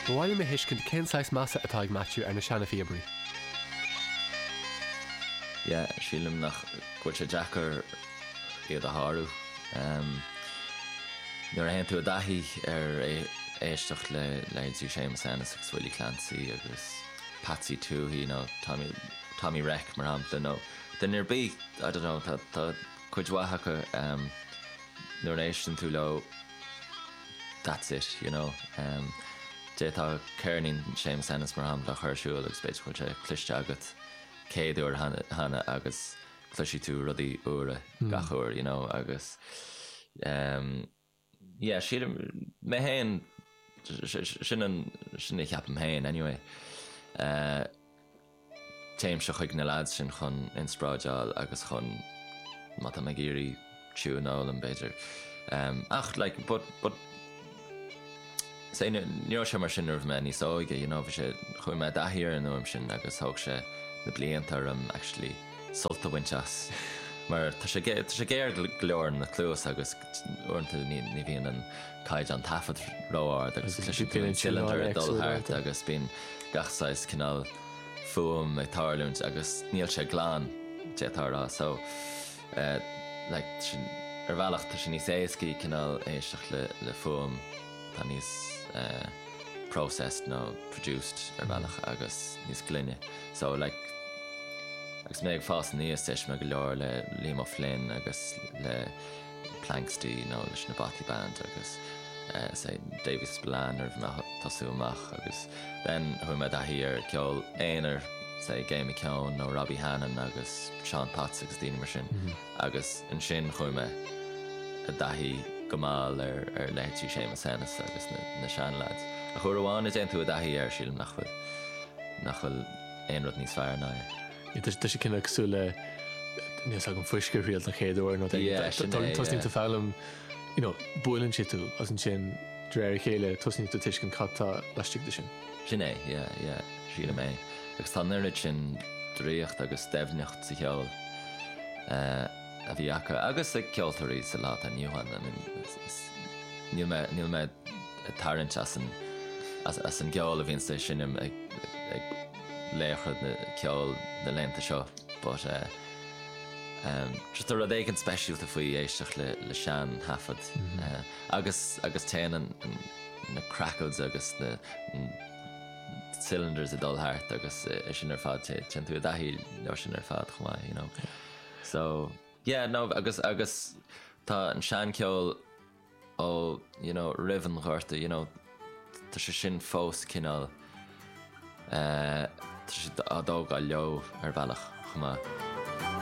Ba mhaith liom a thuiscint cén saghas measa atá ag Matthew ar na seana-phíobairí. Yeah, sílim nach, go bhfuil sé deacair iad a shárú. Em, nuair a théann tú i dtaithí ar, éisteacht le leithéidí Séamus Ennis agus Willie Clancy agus Patsy Touhey nó Tommy, Tommy Reck mar shampla nó duine ar bith, I dunno, tá, tá cuid mhaith acu, em, nuair a éisteann tú leo, that's it, you know. D'fhéadfá ceirnín Séamus Ennis, mar shampla, a chur ar siúl agus b'fhéidir go bhfuil sé cloiste agat céad uair cheana agus cloisfidh tú rudaí úra gach uair, you know, agus um, yeah, sílim mé féin sin an, sin a cheapaim féin anyway. Uh, Téimse chuig na leaids sin chun inspráideáil agus chun, má tá mé ag iarraidh tiúin a fhoghlaim b'fhéidir. Ach like but but say ní raibh sé mar sin nuair a bhí mé níos óige, you know, bhí sé, chuaigh mé i dtaithí ar an fhuaim sin agus thóg sé na blianta orm actually sult a bhaint as mar tá sé géar go leor ar an gcluas agus Uaireanta ní bhíonn an caighdeán taifead ró-ard agus tá an cylinder ag dul thart agus bíonn gach saghas cineál fuaim ag tarlúint agus níl sé glan, d'fhéadfá a rá. So, like, ar bhealach tá sé níos éascaí cineál éisteacht le fuaim atá níos processed nó produced ar bhealach agus níos glaine. So, like, agus mé ag fás aníos d'éist mé go leor le Liam Ó Floinn agus le. Planxty nó leis na Bothy Band agus leithéidí Davy Spillane nuair a bhí mé ag tosú amach agus then chuaigh mé i dtaithí ar ceol aonair, leithéidí Gay McKeon nó Robbie Hannan agus Seán Potts agus daoine mar sin agus ansin chuaigh mé i dtaithí go mall ar leithéidí Séamus Ennis agus na seanleaids ach uair amháin a dtéann tú i dtaithí air sílim nach bhfuil aon rud níos fearr ná é. Tá sé cosúil le níl a fhios agam fuisce a thriail don chéad uair nó d'aon tosnaíonn tú foghlaim, you know, buaileann sé tú agus ansin de réir a chéile tosnaíonn tú tuiscint cad tá laistigh de sin. Sin é, yeah, yeah, sílim é. Agus tá an oiread sin draíocht agus doimhneacht sa cheol a bhí acu agus ag ceoltóirí sa lá atá inniu ann. I mean, is, níl mé, níl mé ag tarraingt as an, as an gceol a bhíonns á sheinm ag, ag, laochra ceoil na laethanta seo but ehm just tá rud éigin speisialta faoi éisteacht le le sean thaifead agus agus téann an na crackles agus na cylinders ag dul thart agus é sin ar fad té téann tú i dtaithí leo sin ar fad chomh maith you know so yeah no agus agus tá an sean ceol ó you know roimh an Ghorta you know tá sé sin fós cineál eh tá siad á dtógáil leo ar bhealach chomh maith.